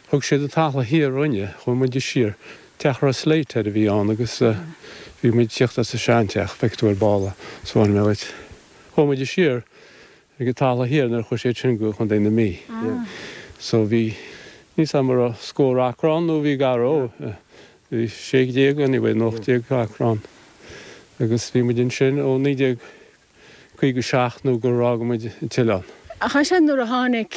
Thug siad teach an Chaladh Thiar dhúinne, chuaigh muid siar, teach a raibh slate air a bhí ann agus bhí muid ag tíocht as an sean teach, feicfidh tú ar ball é, soir mé dhuit. Chuaigh muid siar ag teach an Chaladh Thiar nuair a chuaigh siad sin go Contae na Mí. So bhí, níl 's agam an raibh scór acra ann nó bhí gar dhó, bhí sé déag anyway nó ocht déag acra ann agus bhí muid ansin ó naoi déag, 57 nó gur fhág muid an t-oileán. Ach ansin nuair a tháinig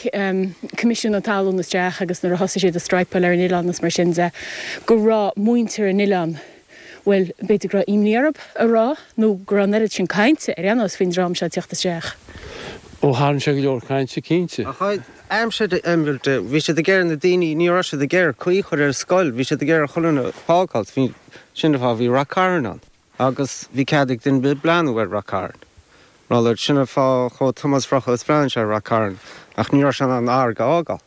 Coimisiún an Talún isteach agus nuair a thosaigh siad ag straidhpeáil ar an oileán is mar sin de go raibh muintir an oileáin, bhuel, b'fhéidir go raibh imní orthu a rá nó go raibh an oiread sin cainte ar aon nós faoin dream seo ag tíocht isteach. Ó, tharraing sé go leor cainte, cinnte. Ach ag aimsir an iomraimh de, bhí siad ag iarraidh na daoine, ní raibh siad ag iarraidh caoi a chur ar an scoil, bhí siad ag iarraidh chuile dhuine a fhágáilt, sin an fáth a bhí Ráth Cairn ann. agus bhí cead ag duine ar bith breathnú ar Ráth Cairn. Malairt sin é an fáth a chuaigh Tomás Brochagh is bhreathnaigh sé ar Ráth Cairn ach ní raibh sé in ann an fharraige a fhágáil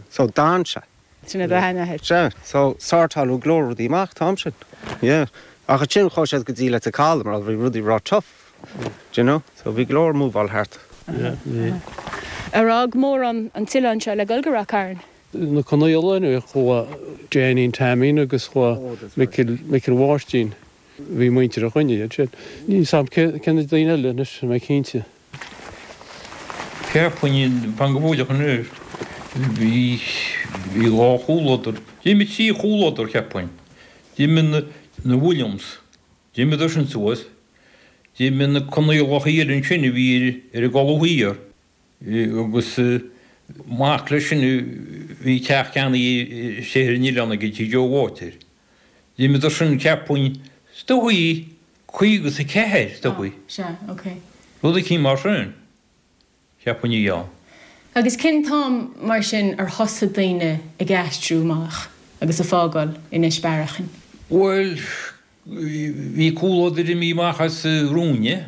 so d'fhan sé. Sin a bhean a. Sea, so sortáladh go leor rudaí amach an t-am sin. Yeah. Ach ansin chuaigh siad go dtí Leitir Calaidh mar bhí rudaí ró-tough, do you know, so bhí go leor ag move-áil thart. Yeah, bhí. Ar fhág mórán an t-oileán seo le dhul go Ráth Cairn? na Conaola inniu. Chuaigh Jeainín Teaimín agus chuaigh Micil Mhicil Mháirtín. Bhí muintir an choinne, iad sin. Níl fhios a'm cé na daoine eile anois, tá mé cinnte. Cheapfainn fan go fóilleach anois. Bhí bhí dhá chomhluadar. D'imigh trí chomhluadar cheapfainn. D'imigh na na Williams. D'imigh siad sin suas. D'imigh na Conaolacha iad ansin a bhí ar an gCaladh Thiar. agus mac leis sin a bhí teach ceannaithe siar ar an oileán aige tigh Joe Water. D'imíodar sin cheapfainn is dóichí caoga is a ceathair is dóichí. Rud eicínt mar sin cheapfainn a bhí ann. Agus cén t-am mar sin ar thosaigh daoine ag aistriú amach agus a' fágáil Inis Bearacháin? Bhuel bhí comhluadar imithe amach as romhainne.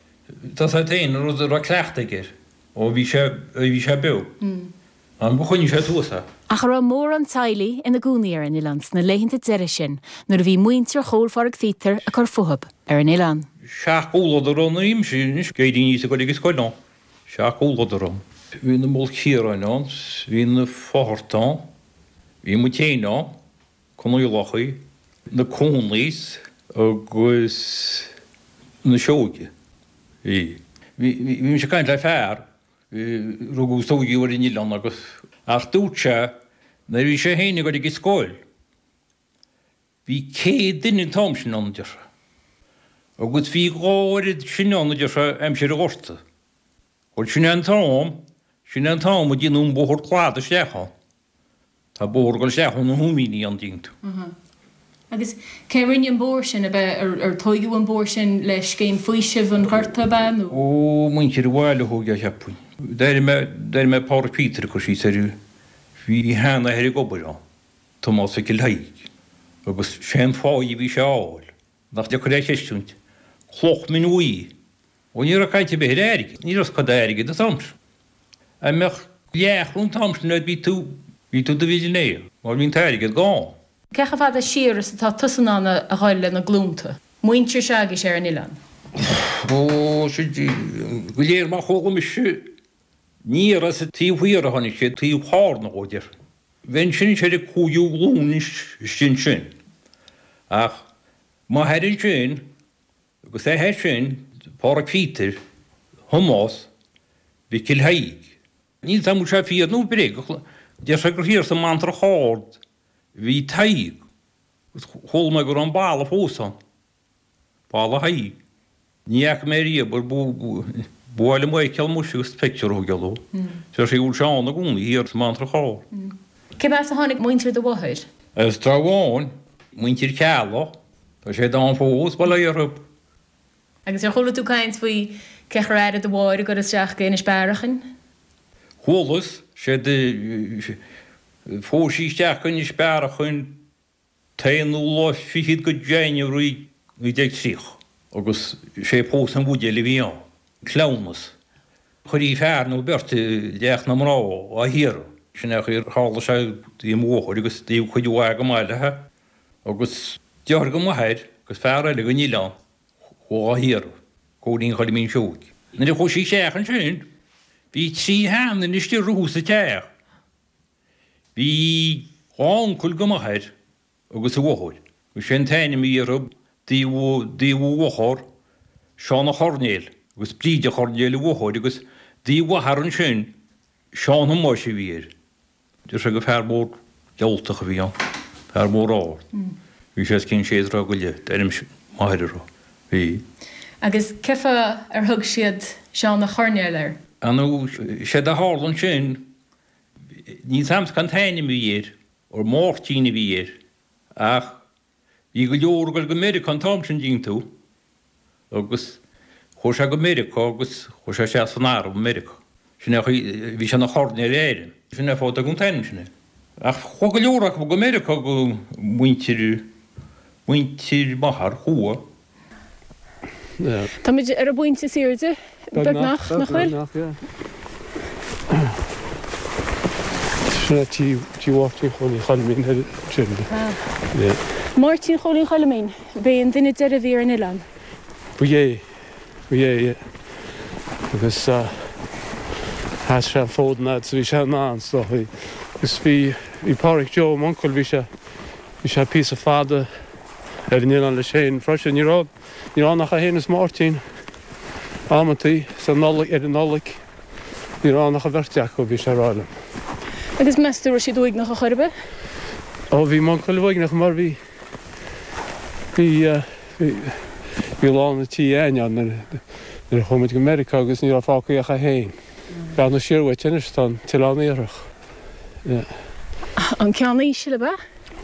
Tá siad féin an rud a raibh cleachtadh aige air ó bhí sé ó bhí sé beo, gur choinnigh sé suas é. Ach a raibh mórán teaghlaigh ina gcónaí ar an oileán sna laethanta deiridh sin nuair a bhí muintir Chóil Phádraig Phíotair ag cur fúthab ar an oileán. 7 gcomhluadar ann anois anois nuair a bhí mise ag goil ag scoil ann, 7 gcomhluadar ann. Bhí na Maoilchiaráin ann, bhí na Fatharta ann, bhí muid féin ann. Conaolacha, na Cuanaigh agus na Seoige. Bhí mise ag caint le fear, rugadh is tóigeadh ar an oileán agus, ach dúirt sé nuair a bhí sé féin ag goil ag an scoil, bhí céad duine an t-am sin ann, deir sé, agus bhí dhá oiread sin ann, deir sé, aimsir an Ghorta. Bhuel, sin é an t-am, sin é an t-am a déanadh an bóthar cladaigh isteach ann. Tá bóthar ag dul isteach na hUmíní ann dtuigeann tú. Uh-huh. Agus cé a rinne an bóthar sin? Ab é, ar, ar tóigeadh an bóthar sin le scéim faoisimh an Ghorta, ab ea, nó? Ó, muintir an bhaile a thóg é, cheapfainn. D'airigh mé, d'airigh mé Pádraic Peter ag cur síos air, bhí a sheanathair ag obair ann, Tomás Mhicil Thaidhg, agus sé'n pháigh a bhí sé a fháil, nach deacair é a chreistiúint, cloch mhin bhuí, Bhuel, ní raibh caint ar bith ar airgead. Ní raibh scoth d'airgead an t-am sin. Dá mbeadh leathchoróin an t-am sin agat bhí tú, bhí tú i do mhillionaire mar bhí an t-airgead gann. Cé chomh fada siar is atá tusa in ann a dhul le na glúnta, muintir Seoighe ar an oileán? Ó, siad do réir mar a chuala mise. Ní as an taobh thiar a tháinig siad, taobh thoir nó go deimhin. Bhí ansin is ar an cúigiú glúin istigh ansin. Ach má thairionn sin, Agus é sin Phádraic Pheter Thomáis Mhicil Thaidhg. Níl 's a'm an bhfuil sé fíor nó bréagach, deir sé gur thiar sa mBantrach Ard a bhí Tadhg, agus chuala mé go raibh an balla fós ann, Balla Thaidhg. Ní fhaca mé riamh ach ba mhaith liom é a fheiceáil muise agus an pictiúr a choinneáil ó deir sé go bhfuil sé ann i gcónaí, thiar sa mBantrach Ard. Cé as a tháinig muintir do mháthair? As Trá Bháin muintir Cheallaigh. Tá siad ann fós, bail ó Dhia orthu. Agus ar chuala tú caint faoi cé chaoi ar tharla do mháthair a dhul isteach go Inis Bearachain? Chualas, sea, do phós sí isteach go Inis Bearachain an t-aonú lá fichead go January 1930 agus sé pósadh an bhuidéil a bhí ann, cleamhnas. Chuirtí fear nó beirt go teach na mná á hiarraidh, sin é an chaoi a tharla sé, do mo mháthair agus do chuid mhaith chomh maith léithe. agus deartháir go m'athair agus fear eile gon oileán a chuaigh dhá hiarraidh, Cóilín Choilmín Seoigh. Nuair a chuaigh sí isteach ansin, bhí trí sheanduine istigh rompu sa teach. Bhí dhá uncail go m'athair agus a mháthair, agus sé an t-ainm a bhí orthu, taobh a mháthar, Seán a' Choirnéil, agus Bríd a' Choirnéil a mháthair, agus taobh a athar ansin, Seán Thomáis a bhí air. Deir sé gur fear mór diabhaltach a bhí ann, fear mór ard. Bhí sé as cionn sé troigh go leith, d'airínn m'athair a rá. Bhí. Agus cé fáth ar thug siad Seán a' Choirnéil air? An séard a tharla ansin, níl 's a'msa cén t-ainm a bhí air, Máirtín a bhí air, ach. Bhí go leor ag dul go Meiriceá an t-am sin dtuigeann tú agus chuaigh sé go Meiriceá agus chuaigh sé isteach san arm i Meiriceá. Sin é chaoi, bhí sé ina Choirnéal in Éirinn. Sin é fáth a dtugadh an t-ainm sin air. Ach chuaigh go leor acu go Meiriceá go muintir, muintir m'athar, chuaigh. Táimid ar an bpointe is airde, beagnach, nach bhfuil? Beagnach, beagnach, yeah. Tá sí ag tí Mháirtín Chóilín Choilmín ar deireadh, yeah. Máirtín Chóilín Choilmín, b'é an duine deireadh a bhí ar an oileán. Ba é, ba é, yeah. Agus sheas sé an fód an fhaid a bhí sé in ann is dócha. Agus bhí Pádraig Joe, m'uncail, bhí sé, bhí sé píosa fada. Ar an oileán leis féin freisin, ní raibh ní raibh ann ach é féin is Máirtín. Amantaí sa Nollaig, ar an Nollaig, ní raibh ann ach an bheirt acu, bhí sé ag rá liom. Agus meas tú go raibh siad uaigneach chor ar bith? Ó, bhí m'uncail uaigneach mar bhí, bhí, bhí, bhí lán an tí againn ann nuair, nuair a chuaigh muid go Meiriceá agus ní raibh fágtha ach é féin. Bealach na Srathrach anois, tá an tOileán Iarthach. An ceann íseal, ab ea?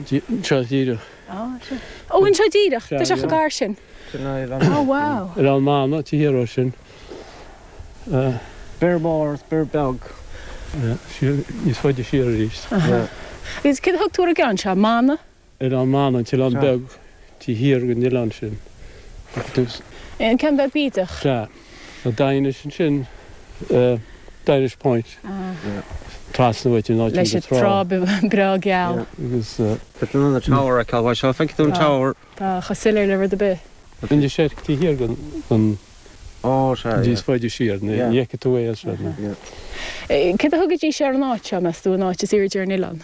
Sea, díreach. Ó, anseo díreach, tá sé chomh gar sin. Ó, wow. Ar an mbanna, taobh thiar dhó sin. Bior Mór agus Bior Beag. Níos faide siar arís. Agus céard a thug tú ar an gceann seo, mbanna? Ar an mbanna, an t-oileán beag, taobh thiar den oileán sin. An ceann beag bídeach? Sea. An Daighinis ansin, Dinish Point, trasna uait in áit an trá. Leis an trá breá geal. Agus. Feiceann an Tower aici abhaile seo, feiceann tú an Tower? Tá chomh soiléir le rud ar bith. Inis Eirc taobh thiar ann níos faide siar, ní fheiceann tú é as seo. Céard a thugaidís ar an áit seo, meas tú, an áit is airde ar an oileán?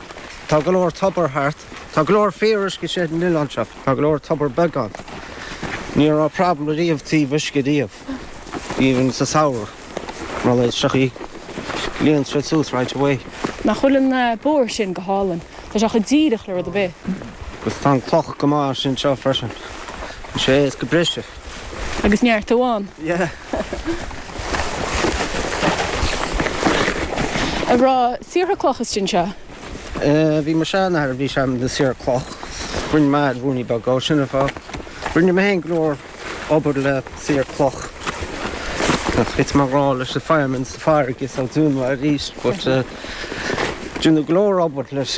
Tá go leor tobair thart. Tá go leor fíoruisce istigh san oileán seo. Tá go leor tobair bheaga ann. Ní raibh problem ariamh ó thaobh uisce riamh, even sa samhradh, mar a leithéid seo í, líon siad suas right away. Nach bhfuil an bóthar sin go hálainn? Tá sé chomh díreach le rud ar bith. Agus tá an cloch go maith anseo freisin. Is é is go breise. Agus neart a bhí ina saortha cloch istigh anseo. Bhí mo sheanathair, bhí sé ina shaor cloch. Rinne mé ruainne beag ó sin a fá. Rinne mé féin go leor obair le saor cloch. Bhí mar rá leis na firemen sa fire agus an dún arís. Rinne go leor obair leis.